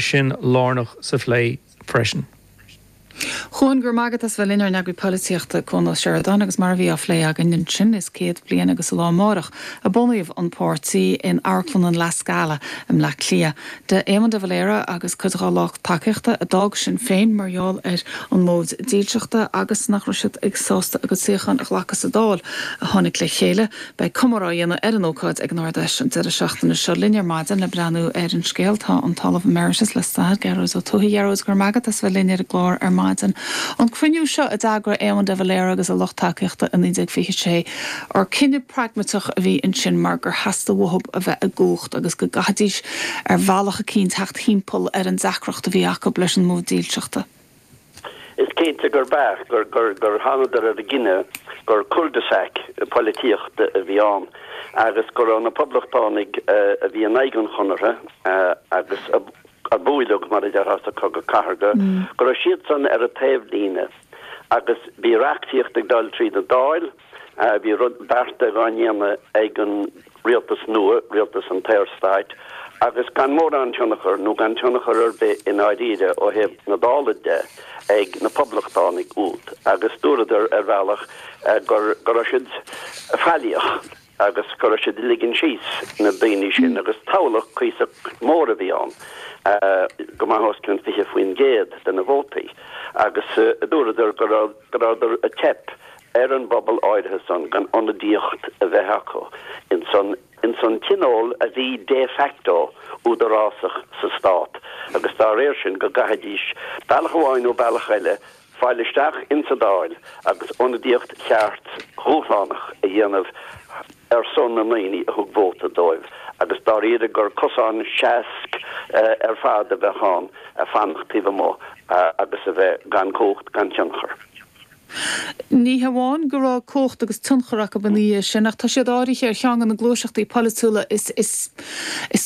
sin lárnach sa phlé freisin. Cuan, go raibh maith agat as bheith linn ár n-eagraí Polaitíochta, Cuan Ó Seireadáin, agus mar a bhí á phlé againn ansin, is céad bliain agus an lá amárach a bunaíodh an páirtí in Amharclann an La Scala i mBleá Cliath. d'Éamon de Valera agus cuid dhá lucht tacaíochta a d'fhág Sinn Féin mar gheall ar an móid dílseachta agus nach raibh siad sásta a gcuid suíochán a ghlacadh sa Dáil a tháinig le chéile Beidh comóradh á dhéanamh ar an ócáid ag an Ard-Fheis an deireadh seachtaine seo Linn ar maidin le breathnú ar an scéal tá an tOllamh Emeritus le Stair, Gearóid Ó Tuathaigh. A Ghearóid, go raibh maith agat as bheith linn ar an gclár ar maidin. An cruinniú seo, a d'eagraigh Éamon de Valera agus a lucht tacaíochta i 1926, cinneadh pragmatach a bhí ansin mar gur theastaigh uathu a bheith i gcumhacht agus go gcaithfidís ar bhealach eicínt theacht thimpeall ar an deacracht a bhí acu leis an móid dílseachta. Is cinnte gur beart gur thángadar ar an gcinneadh gur cul de sac poilitíochta a bhí ann agus go raibh na poblachtánaigh a bhí in aghaidh an chonartha agus a bhuaileadh, mar a déarfá, sa Cogadh Cathardha, go raibh siadsan ar an taobhlíne. Agus bhí reachtaíocht ag dul tríd an Dáil. Bhí bearta á ndéanamh ag an rialtas nua, rialtas an tSaorstáit, agus gan mórán tionchar, nó gan tionchar ar bith i ndáiríre ó thaobh na Dála de, ag na Poblachtánaigh úd, agus dúradar, ar bhealach, go raibh siad faillíoch agus go raibh siad ag ligean síos na daoine sin, agus toghlach cuíosach mór a bhí ann, go maith os cionn 20% de na vótaí, agus dúradar go rabhadar ag teip ar an bpobal áirithe san gan ionadaíocht a bheith acu ins an ins an tionól a bhí de facto údarásach sa stát agus dá réir sin go gcaithfidís, bealach amháin nó bealach eile, fáil isteach ins an Dáil agus ionadaíocht cheart dhúshlánach a dhéanamh ar son na ndaoine a thug vóta dóibh agus dáiríre gur cosán seasc ar fad a bheadh ann fanacht taobh amuigh agus a bheith gan chumhacht gan tionchar. Ní hamháin go raibh cumhacht agus tionchar acu ina dhiaidh sin, ach tá siad áirithe ar cheann de na gluaiseachtaí polaitiúla is is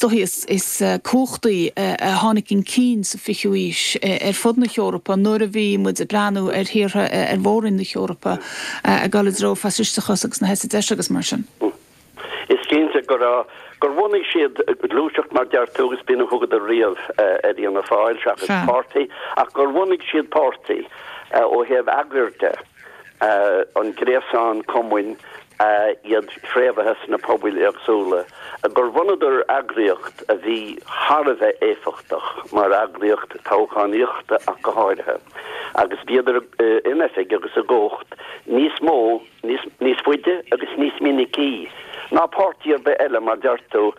dóichí is cumhachtaí a tháinig chun cinn sa 20ú haois ar fud na hEorpa nuair a bhí muid ag breathnú ar thíortha ar mhórroinn na hEorpa ag dul i dtreo faisisteachas agus na heite deise agus mar sin. Is cinnte gur bhunaigh siad gluaiseacht, mar a deir tú, agus b'in a thugadar riamh ar Fhianna Fáil seachas páirtí, ach gur bhunaigh siad páirtí ó thaobh eagair de, an gréasán cumainn, iad fréamhaithe sna pobail éagsúla, gur bhunaíodar eagraíocht a bhí thar a bheith éifeachtach mar eagraíocht toghchánaíochta ach go háirithe, agus bhíodar in oifig agus i gcumhacht níos mó. níos faide agus níos minicí ná páirtí ar bith eile mar deir tú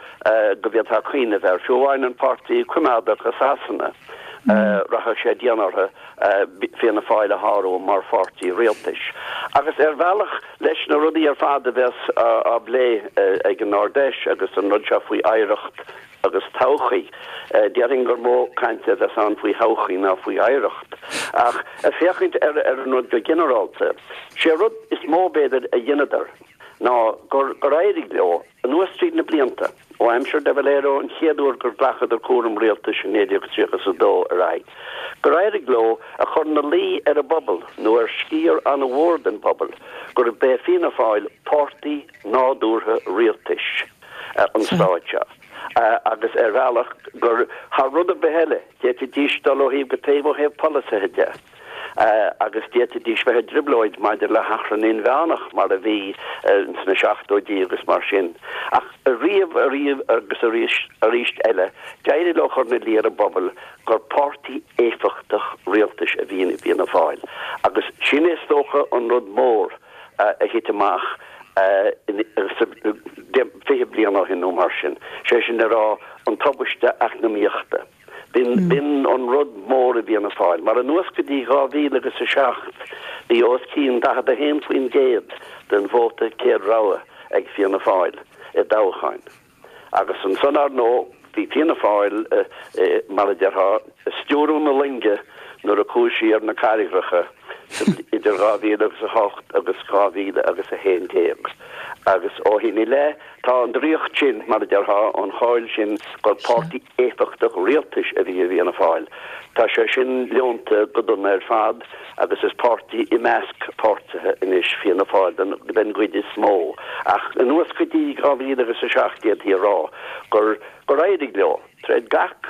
go bhféadfá cuimhneamh air, fiú amháin an Páirtí Coimeádach i Sasana, rachadh sé dian orthu Fianna Fáil a shárú mar pháirtí rialtais. Agus ar bhealach, leis na rudaí ar fad a bheas á bplé ag an Ardfheis agus an rud seo faoi oidhreacht agus todhchaí. Déarfainn gur mó cainte a bheas ann faoi thodhchaí ná faoi oidhreacht. Ach ag féachaint ar an rud go ginearálta, sé rud is mó b'fhéidir a dhéanadar ná gur gur éirigh leo, anuas tríd na blianta, ó aimsir de Valera an chéad uair gur ghlacadar cúram rialtais i 1932 ar aghaidh, gur éirigh leo a chur 'na luí ar an bpobal, nó ar sciar an-mhór den phobal, gurb é Fianna Fáil páirtí nádúrtha rialtais. an stáit seo, agus ar bhealach gur, thar rud ar bith eile, d'fhéadfaidís dul ó thaobh go taobh ó thaobh polasaithe de, agus d'fhéadfaidís bheith i dtrioblóid maidir le hachrann inmheánach, mar a bhí sna seachtóidí agus mar sin. Ach riamh ariamh agus arís arís eile, d'éirigh leo chur ina luí ar an bpobal gur páirtí éifeachtach rialtais a bhí i bhFianna Fáil, agus sin é is dócha an rud mór, a thit amach fiche bliain ó shin nó mar sin, sé sin le rá an tubaiste eacnamaíochta. B'in an rud mór a bhain d'Fhianna Fáil, mar anuas go dtí dhá mhíle agus a seacht bhí os cionn 41% den vóta céad rogha ag Fianna Fáil i dtoghcháin. Agus ansan, ar ndóigh, bhí Fianna Fáil, mar a déarfá, ag stiúradh na loinge nuair a chuaigh sí ar na carraigreacha idir 2000 agus 8 agus 2000 agus 11. Agus ó shin i leith, tá an draíocht sin, mar a déarfá, an cháil sin gur páirtí. éifeachtach rialtais a bhí i bhFianna Fáil. Tá sé sin leonta go dona ar fad agus is páirtí i measc páirtithe anois Fianna Fáil den gcuid is mó. Ach anuas go dtí 2007 d'fhéadfaí a rá gur éirigh leo, tríd gach